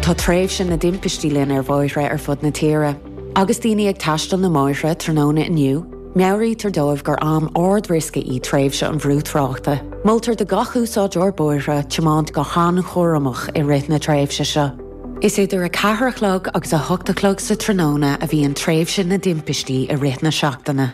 Tá tréimhse na dtimpistí linn ar bhóithre ar fud na tíre. Agus daoine ag taisteal na mbóithre tráthnóna inniu, meabhraítear dóibh gur am ard-riosca í tréimhse an bhrú tráchta. Moltar do gach úsáideoir bóithre tiomáint go han-chúramach i rith na tréimhse seo. Is idir a ceathair a chlog agus a hocht a chlog sa tráthnóna a bhíonn tréimhse na dtimpistí i rith na seachtaine.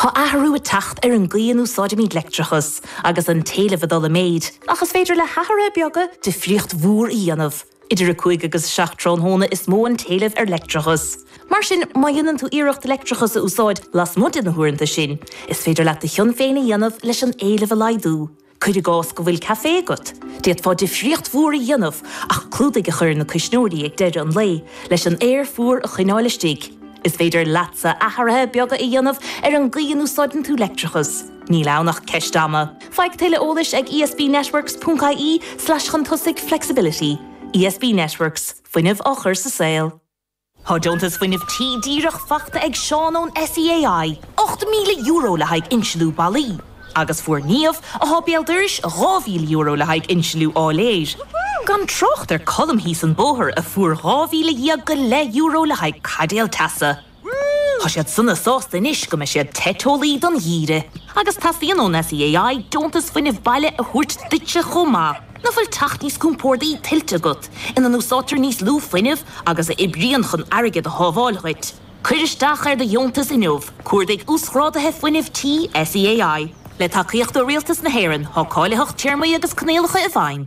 Tá athrú ag teacht ar an gcaoi a n-úsáidimid leictreachas agus an t-éileamh ag dul i méid, ach is féidir le hathruithe beaga difríocht mhór a dhéanamh. Idir 5 agus 7 tráthnóna is mó an t-éileamh ar leictreachas. Mar sin, má dhéanann tú iarracht leictreachas a úsáid lasmuigh de na huaireanta sin, is féidir leat do chion féin a dhéanamh leis an éileamh a laghdú. Cuir i gcás go bhfuil caifé agat, d'fhéadfá difríocht mhór a dhéanamh ach clúdaigh a chur ar na cuisneoirí ag deireadh an lae leis an aer fuar a choinneáil istigh. Is féidir leatsa athruithe beaga a dhéanamh ar an gcaoi a n-úsáideann tú leictreachas, níl ann ach ceist ama! Faigh tuilleadh eolais ag ESBnetworks.ie slash chun tosaigh flexibility. ESB Networks, fuinneamh á chur sa saol. Tá deontas Fuinnimh Tí díreach faighte ag Seán ón SEAI, €8,000 le haghaidh insliú ballaí, agus fuair Niamh, athá béal dorais, €2,000 le haghaidh insliú áiléir, gan trácht ar Colm thíos an bóthar a fuair €12,000 go leith euro le haghaidh caidéal teasa. Tá siad sona sásta anois go mbeidh siad te teolaí don gheimhreadh, agus teastaíonn ón SEAI deontas fuinnimh baile a thabhairt duitse chomh maith. An bhfuil teach níos compórdaí tuillte agat ina n-úsáidtear níos lú fuinnimh agus a oibríonn chun airgead a shábháil dhuit? Cuir isteach ar do dheontas inniu, cuardaigh Uasghráduithe Fuinnimh Tí SEAI. Le tacaíocht ó Rialtas na hÉireann, tá cáilitheacht téarmaí agus coinníollacha i bhfeidhm.